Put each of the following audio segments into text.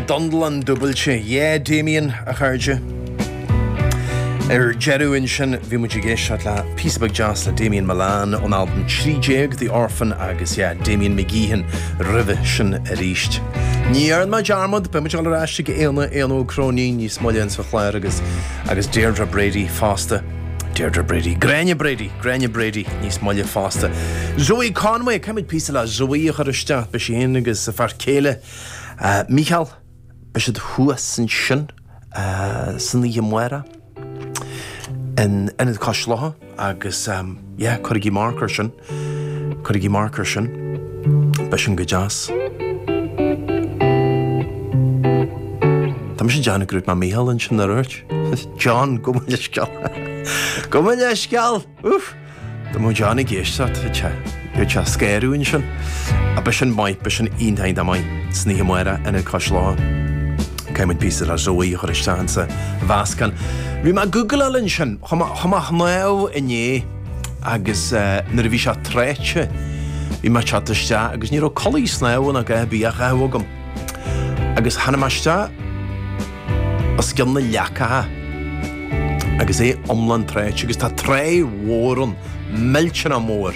Donnlann dúbailte, yeah Damien, a chairde. Ar deireadh ansin, bhí muid ag éisteacht le píosa beag deas le Damien Mullane ón albam 13 The Orphan agus yeah, Damien McGeehan roimhe sin arís. Ní dhearn mé dearmad, beidh muid ag dul ar ais chuig Éanna, Éanna Ó Cróinín níos moille ins an chlár agus agus Deirdre Brady fosta. Deirdre Brady, Gráinne Brady, Gráinne Brady níos moille fosta. Zoe Conway, caithfidh muid píosa le Zoe a chur isteach, beidh sí fhéin agus a fear céile Mícheál, beidh siad thuas ansin san oíche mhór in Ionad Cois Locha agus. Yeah, cuirigí marc ar sin. Cuirigí marc ar sin. Beidh sin go deas. Tá mé ag déanamh gur dhúirt mé Mícheál ansin, ar dhúirt? John, gabh mo leithscéal. Gabh mo leithscéal! Úf! Tá mo John ag éisteacht, tá sé. Tá sé scairú ansin. A beidh sin maith, beidh sin iontach dá maith. San oíche mhór in Ionad Cois Locha, caithfidh muid píosa le Zoe a chur isteach insa mheascán. Bhí mé ag googláil ansin. Chuaigh mé a shnámh inné agus nuair a bhí sé tráite bhí mé ag teacht isteach agus ní raibh culaith snámha ná a dhath ar bith á chaitheamh agam agus tháinig mé isteach os cionn na leacacha agus é iomlán tráite agus tá tráigh mhór ann, millteanach mór.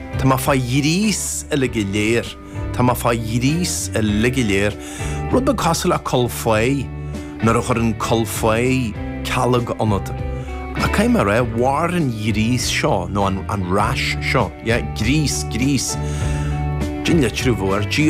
Tá mé fá ghríos uilig go léir, tá mé fá ghríos uilig go léir, rud beag cosúil le cúl fáich, nuair a chuireann cúl fáich cealg ionat. Ach caithfidh mé a rá, mhair an ghríos seo, nó an rash seo, yeah, gríos, gríos, sin an litriú a bheadh air, GRÍ.